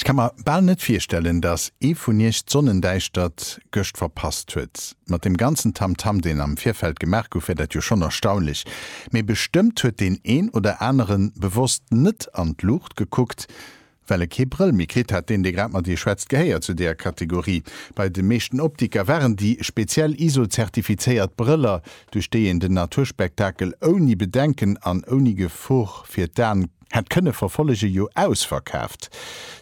Ech ka mer bal net virstellen, dass ee vun iech d'Sonnendäischtert gëscht verpasst huet. Mat deem ganzen Tamtam, deen am Virfeld gemaach gouf, wär dat jo schonn erstaunlech. Mee bestëmmt huet deen een oder aneren bewosst net an d'Luucht gekuckt, Well e kee Brëll méi kritt hat, deen dee grad mat ee schwätzt, gehéiert zu deeër Kategorie. Bei de meeschten Optiker waren déi speziell ISO-zertifizéiert Brëller, duerch déi een den Naturspektakel ouni Bedenken an ouni Gefor fir d'An hätt kënne verfollegen, jo ausverkaaft.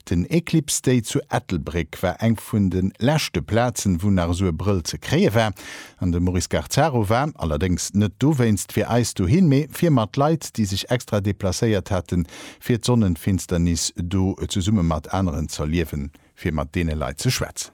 Den Eclipse Day zu Ettelbréck war eng vun de leschte Plazen, wou nach esou e Brëll ze kréie war. An de Maurice Garzaro war allerdéngs net dowéinst fir eis dohin, mee fir mat Leit, déi sech extra deplacéiert haten, fir d'Sonnenfinsternis do zesumme mat aneren z'erliewen, fir mat deene Leit ze schwätzen.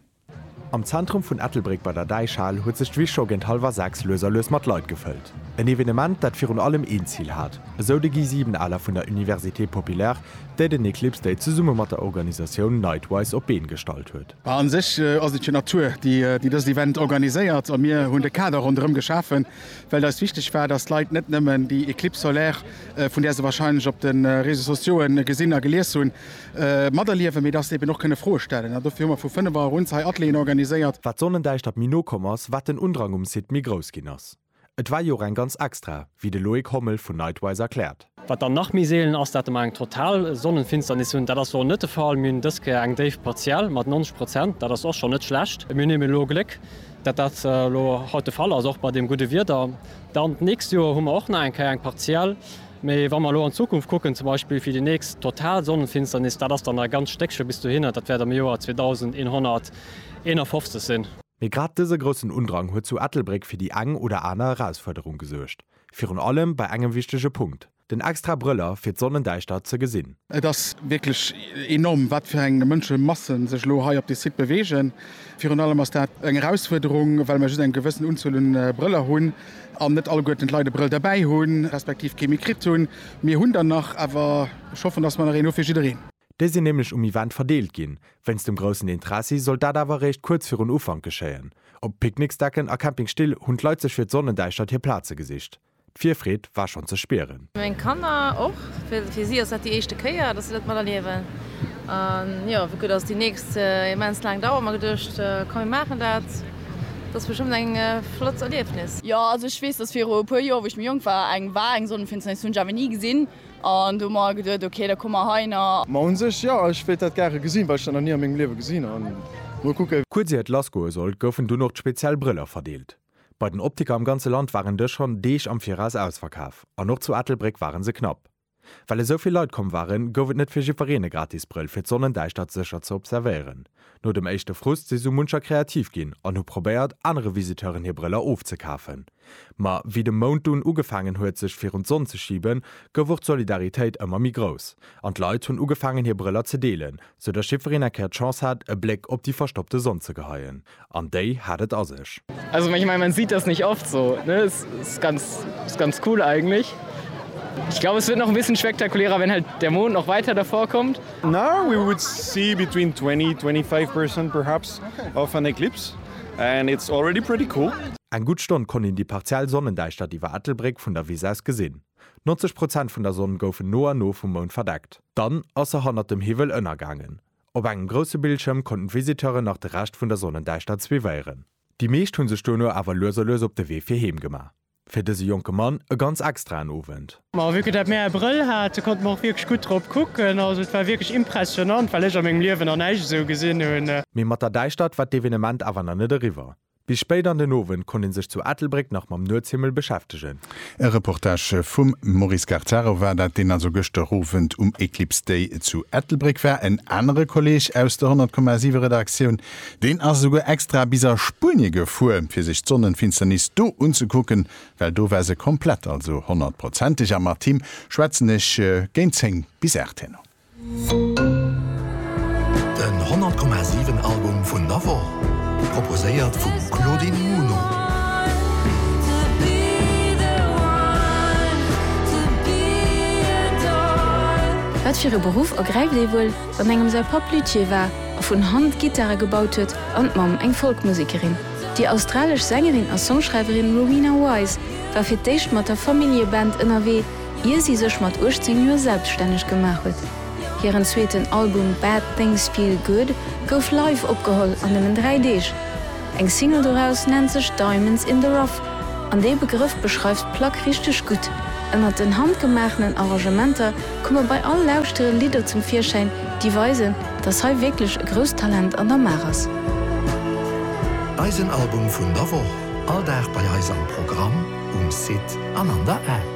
Am Zentrum vun Ettelbréck bei der Däichhal huet sech d'Wiss scho géint hallwer 6 lues a lues mat Leit gefëllt. En Evenement, dat virun allem een Zil hat, esou de Guy Siebenaler vun der Université Populaire, déi den Eclipse Day zesumme mat der Organisatioun Nightwise op d'Been gestallt huet. Bah, an sech ass et jo d'Natur, déi déi dëst Event organiséiert a mir hunn de Kader ronderëm geschafen, well et eis wichteg war, dass d'Leit net nëmmen déi Eclipse solaire, vun där se wahrscheinlech op de Réseaux sociaux gesinn a gelies hunn, materliewen, mee dass se eben och kënne Froe stellen. An dofir hu mer vu 5 Auer un hei Atelieren organiséiert. Wat d'Sonnendäischtert méi no komm ass, wat den Undrang um Site méi grouss ginn ass. Et war jo och eng ganz extra, wéi de Loïc Hommel vun Nightwise erkläert. Wat dann nach méi seelen ass, dat de mer eng total Sonnenfinsternis hunn. Dat ass elo net de Fall. Mir hunn dës Kéier eng Déif partiell mat 90 Prozent. Dat ass och schonn net schlecht. Mir hunn eben elo Gléck, dat dat elo haut de Fall ass, och bei deem gudde Wieder. Dann d'nächst Joer hu mer och nach eng Kéier eng partiell. Mee wa mer elo an d'Zukunft kucken, zum Beispill fir déi nächst total Sonnenfinsternis, dat ass dann nach e ganz Stéckche bis dohinner, dat wäert am Joer 2151 sinn. Mee grad dëse groussen Undrang huet zu Ettelbréck fir déi eng oder aner Erausfuerderung gesuergt. Virun allem bei engem wichtege Punkt, den extra Brëller fir d'Sonnendäischtert ze gesinn. Et ass wierklech enorm, wat fir eng Mënschemassen sech elo hei op dee Site beweegen. Virun allem ass dat eng Erausfuerderung, well mer just eng gewëssen Unzuel un Brëller hunn an net alleguerten d'Leit e Brëll derbäi hunn, respektiv kee méi kritt hunn. Mir hunn der nach, awer ech hoffen, dass mer nach een hu fir jiddereen. Déi sinn nämlech um Event verdeelt ginn. Wéinst dem groussen Interessi sollt dat awer eréischt kuerz virun Ufank geschéien. Op Picknicksdecken a Campingstill hunn d'Leit sech fir d'Sonnendäischtert hir Plaze gesicht. D'Virfreed war schonn ze spieren. Meng Kanner och. Fir si ass dat déi éischte Kéier, dass si dat mat erliewen. An jo, wéi gutt ass déi nächst immens laang Dauer? Hu mer geduecht, komm mir maachen dat. Dat ass bestëmmt eng flott Erliefnis. Jo, also ech weess, dass viru e puer Joer, wou ech méi jonk war, eng war eng Sonnenfinsternis. Hunn ech awer ni gesinn. An do hu mer geduet, ok, da komme mer heiner. Ma un sech, jo, ech wéilt dat gare gesinn, well ech dat nach ni a mengem Liewe gesinn hunn. Mol kucke. Kuerz ier et lassgoe sollt, goufen dunn och d'speziell Brëller verdeelt. Bei den Optiker am ganze Land waren dës schonn Deeg am Viraus ausverkaf an och zu Ettelbréck ware se knapp. Well esou vill Leit komm waren, gouf et net fir jiddwereen e gratis Brëll, fir d'Sonnendäischtert sécher ze observéieren. No dem éischte Frust si sou muncher kreativ ginn an hu probéiert, anere Visiteuren hir Brëller ofzekafen. Ma wéi de Mount dunn ugefaangen huet, sech virun d'Sonn ze schiben, gouf och d'Solidaritéit ëmmer méi grouss an d'Leit hunn ugefaangen, hir Brëller ze deelen, sou datt jiddwereen eng Kéier d'Chance hat, e Bléck op déi verstoppte Sonn ze geheien. An déi hat et a sech. Also ich meine, man sieht das nicht oft so, ne? Es ist ganz, ist ganz cool eigentlich. Ich glaube, es wird noch ein bisschen spektakulärer, wenn halt der Mond noch weiter davor kommt. Now we would see between 20, 25 percent perhaps of an eclipse and it's already pretty cool. Eng gutt Stonn konnt een déi partiell Sonnendäischtert iwwer Ettelbréck vun der Wiss aus gesinn. 90 Prozent vun der Sonn goufen no an no vum Mound verdeckt, dann ass se hannert dem Hiwwel ënnergaangen. Op engem grousse Bildschëm konnten d'Visiteuren nach de Rescht vun der Sonnendäischtert suivéieren. Déi meescht hunn sech dono awer lues a lues op de Wee fir heem gemaach. Fir dëse jonke Mann e ganz extraen Owend. Ma vu que dat mär e Brëll hate konnte mer och wierklech gutt drop kucken. Also et war wierklech impressionnant, well ech a mengem Liewen nach näischt esou gesinn hunn. Mee mat der Däischtert war d'Evenement awer nach net eriwwer. Bis spéit an den Owend konnt ee sech zu Ettelbréck nach mam Nuetshimmel beschäftegen. E Reportage vum Maurice Gartaro war dat, deen also gëschter Owend um Eclipse Day zu Ettelbréck war. En anere Kolleeg aus der 100,7 Redaktioun, deen ass esouguer extra bis a Spuenie gefuer, fir sech d'Sonnenfinsternis do unzekucken, well do war se komplett, also honnertprozenteg. A mat him schwätzen ech géint 10 bis 8 herno. Den 100 Komma 7 Album vun der Woch, proposéiert vum Claudine Muno. Wat fir e Beruff ergräift ee wuel, wann engem säi Papp Luthier war a vun Hand Gittare gebaut huet an d'Mamm eng Folkmusekerin? Déi australesch Sängerin a Songschreiwerin Rowena Wise war fir d'éischt mat der Familljeband ënnerwee, Ier si sech mat 18 Joer selbststänneg gemaach huet. Hiren zweeten Album Bad Things Feel Good gouf live opgeholl an nëmmen dräi Deeg. Eng Single doraus nennt sech Diamonds in the Rough an dee Begrëff beschreift d'Plack richteg gutt. Ënnert den handgemaachenen Arrangementer komme bei all Lauschtere Lidder zum Virschäin, déi weisen, dass hei wierklech e grousst Talent an der Maach ass. Eisen Album vun der Woch. All Dag bei eis am Programm, um Site an an der App.